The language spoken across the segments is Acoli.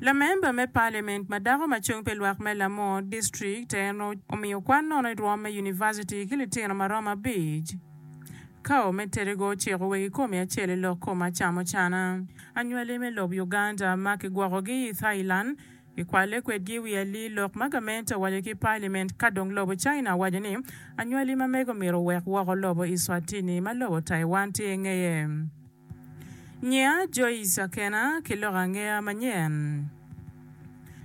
Lamemba me Paliament ma dako ma cung pi lwak me Lamor District en omiyo kwan nono i rwom me Univaciti ki litino ma romo abic. Kao me Terego ociko wegi komi acel i lok kom acamo cana. Anywali me lob Uganda ma kigwokogi i Thailand kikwalle kwedgi i wi alii lok ma gamente owaco ki Paliament ka dong lobo China owaco ni anywali ma mege omyero owek woko lobo Iswatini ma lobo Taiwan tye i ngeye. Nyiya Joyce Akena ki loko angeya manyen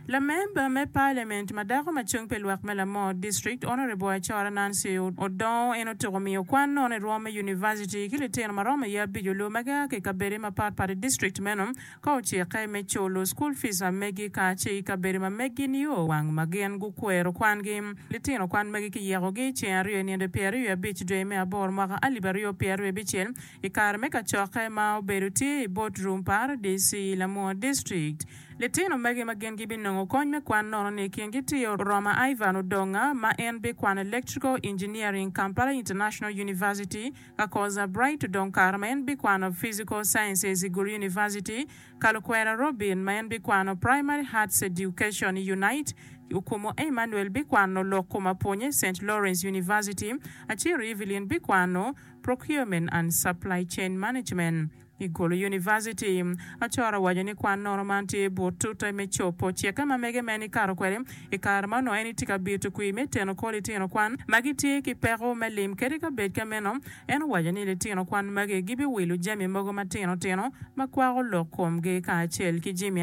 lamemba me Parliament ma dako ma cung pi lwak me Lamor District Honourable Acora Nancy Odongo en otuko miyo kwan nono i rwom me University ki litino ma romo iye abico lur ma gia ki i kabedi ma pat pat i District meno ka ocikke me culu School Fees a megi ka ce i kabedi ma megi nio wang ma gin gukwero kwan gi litino kwan magi ki yeko gi ceng aryo i nino pyero aryo abic dwe me aboro mwaka alip aryo pyero aryo bicel I kare me kacokke ma obedo tye i bot Rum Paradic i Lamua District, litino magi ma gin gibinongo kony me kwan nono ni i kingi tye Oroma Ivan Odonga ma en bikwano Electrical Engineering, Kampala International University, Kakoza Bright Odongkar ma en bikwano Physical Sciences i Gulu University, Kalukwera Robin ma en bikwano Primary Arts Education i Unite, Okumu Emmanuel bikwano lok kom apwonye Saint Lawrence University, Aciro Evelyn bikwano. Procurement and Supply Chain Management, i Gulu University. Achor owaco ni kwan nono man tye but tute me cobo cikke ma mege ma en ikato kwede i kare ma onongo en itye ka bito kwir me teno kwo litino kwan ma gitye ki peko me lim kadi ka bed ka meno en owaco ni litino kwan magi gibiwilo jami mogo matino tino ma kwako lok komgi kacel ki jimi